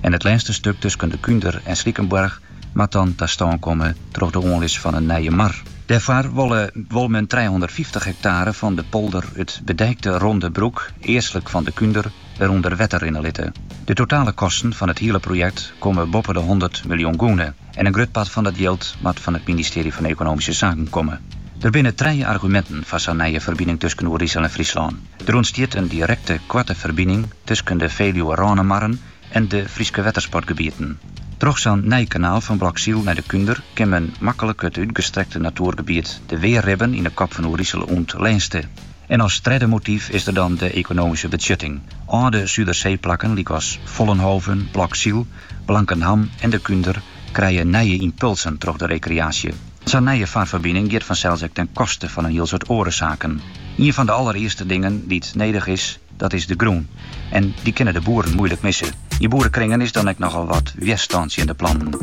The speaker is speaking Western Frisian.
en it lêste stuk tusken De Kunder en Slikenborg moat dan ta stân komme troch de oanlis fan in nije mar. Dêrfoar wol men trijehûndertfyftich hektaare fan de polder it bedijkte Ronde Broek, eastlik fan De Kunder, wer ûnder wetter rinne litte. De totale kosten fan it hiele projekt komme boppe de hûndert miljoen gûne. en in grut part fan dat jild moat fan it ministearje fan Ekonomyske Saken komme. Der binne trije arguminten foar sa'n nije ferbining tusken Oerisel en Fryslân. Der ûntstiet in direkte, koarte ferbining tusken de Feluwe-Rânemarren en de Fryske wettersportgebieten. Troch sa'n nij kanaal fan Bloksyl nei de Kunder kin men maklik it útgestrekte natoergebiet de Weerribben yn de kop fan Oerisel oant lêste. En as tredde motyf is der dan de ekonomyske betsjutting. Alde Suderseeplakken lykas Vollenhove, Bloksyl, Blankenham en De Kunder krije nije ympulsen troch de rekreaasje. Sa'n nije farferbining giet fansels ek ten koste fan in hiel soad oare saken. Ien fan de allerearste dingen dy't nedich is, dat is de grûn. En dy kinne de boeren moeilik misse. Yn boerekringen is dan ek nochal wat wjerstân tsjin de plannen.